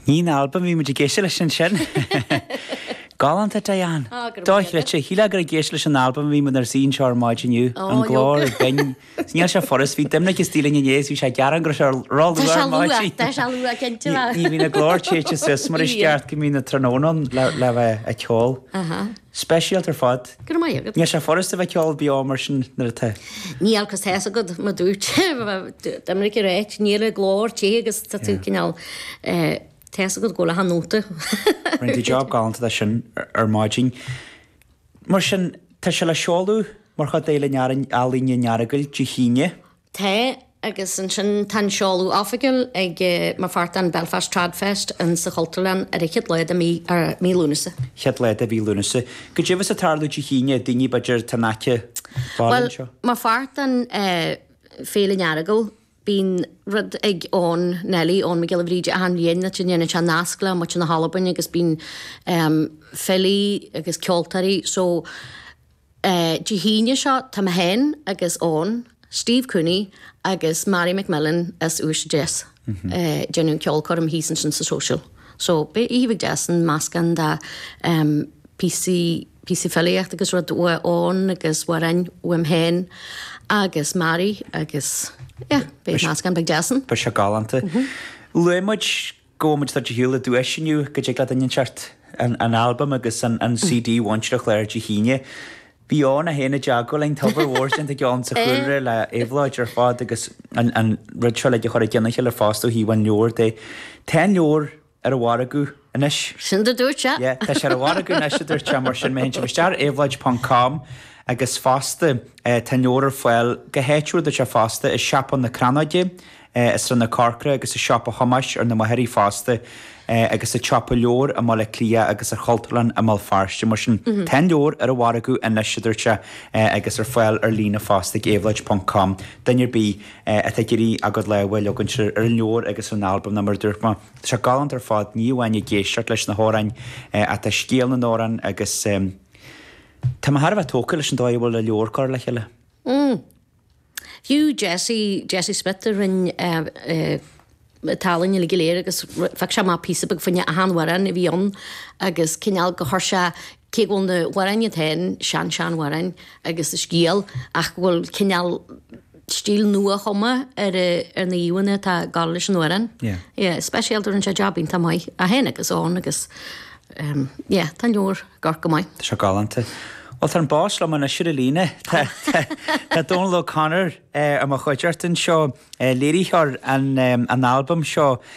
Ní an albam a bhí muid ag éisteacht leis ansin. Galánta Diane! Dochreidte, shílfeá gur ag éisteacht leis an albam a bhí muid ar an seó ar maidin inniu. An glór chomh binn. Is níl sé furast, bhí Doimnic istigh linn inné is bhí sé ag gearán go raibh sé róluath ar maidin. Tá sé luath, cinnte. Ní bhíonn an glór téite suas mar is ceart go mbíonn an tráthnóna ann le bheith ag ceol. Speisialta ar fad. Go raibh maith agat. Níl sé furast a bheith ag ceol beo mar sin nuair atá. Níl, cos tá a fhios agat, mar a dúirt Dominic ar áit, níl an glór te agus tá tú cineál tá a fhios agat ag gabháil le achan nóta. Rinne tú job galanta de sin ar maidin. Mar sin, tá sé le seoladh mar chuid d'Fhéile Ealaíne an Earagail Dé hAoine. Tá, agus ansin tá an seoladh oifigiúil agam mar pháirt den Belfast TradFest in sa Chultúrlann ar an chéad lá de mhí, mí Lúnasa. chéad lá de mhí Lúnasa. Caidé a bheas ag tarlú Dé hAoine, daoine b'fhéidir atá in aice fáil Bhuel, anseo. Mar pháirt den Féile an Earagail, bíonn rud ag Eoghan Neilí, Eoghan Mac Giolla Bhríde, achan bhliain áit a ndéanann sé nasc le muintir na hAlbain agus bíonn filí agus ceoltóirí, so, Dé hAoine seo tá mé féin agus Eoghan, Steve Cooney agus Mary MacMillan as Uibhist a Deas ag déanamh ceolchoirm thíos ansin sa Social. So beidh oíche bheag deas ann, meascán de phíosaí, píosaí filíochta agus rud ó Eoghan agus amhráin uaim féin agus Mary agus yeah, beidh meascán beag deas ann. Beidh sé galánta. Luaigh muid Gabhaimid do do shiúl i dtús inniu, go dtig le daoine teacht ar an albam agus an CD Mhuintir Chláir Dé hAoine. Bhí Eoghan é féin i dteagmháil linn, tá obair mhór déanta ag Eoghan sa chúlra le Éabhlóid ar fad agus an rud seo uilig a chur i gcionn a chéile fosta ó thaobh an leabhar de. Tá an leabhar ar an mhargadh anois. Sin a dúirt sé. Yeah, tá sé ar an mhargadh anois a dúirt sé mar sin má théann sibh isteach ar éabhlóid ponc com agus fosta tá an leabhar ar fáil go háitiúil deirtear fosta i siopa na Crannóige, i Srath na Corcra agus i Siopa Thomáis ar na Machairí fosta, agus sa tsiopa leabhar i mBaile Átha Cliath agus sa Chultúrlann i mBéal Feirste. Mar sin, tá an leabhar ar an mhargadh anois, a dúirt sé, agus ar fáil ar líne fosta ag éabhlóid ponc com. Duine ar bith atá ag iarraidh a gcuid lámh a leagaint ar an leabhar agus ar an albam ná mar a dúirt mé, tá sé galánta ar fad, ní amháin ag éisteacht leis na hamhráin ach tá scéal na n-amhrán agus tá mé thar a bheith tógtha leis an dóigh a bhfuil an leabhar curtha le chéile. Fiú Jesse, Jesse Smith a rinn an ealaín uilig go léir agus phioc sé amach píosa beag fá choinne achan amhrán a bhí ann agus cineál gur chuir sé, cé go bhfuil na hamhráin iad féin sean seanamhráin agus a scéal ach go bhfuil cineál stíl nua chomh maith ar na híomhánna atá ag gabháil leis an amhrán. Yeah. Yeah, speisialta rinne sé jab iontach maith é féin agus Eoghan agus um, yeah, tá an leabhar Go raibh maith. Seo galánta. Bhuel, tá an boss liom anois ar an líne. Tá Dónal O'Connor, i mo chuideachta anseo, léiritheoir an albaim seo.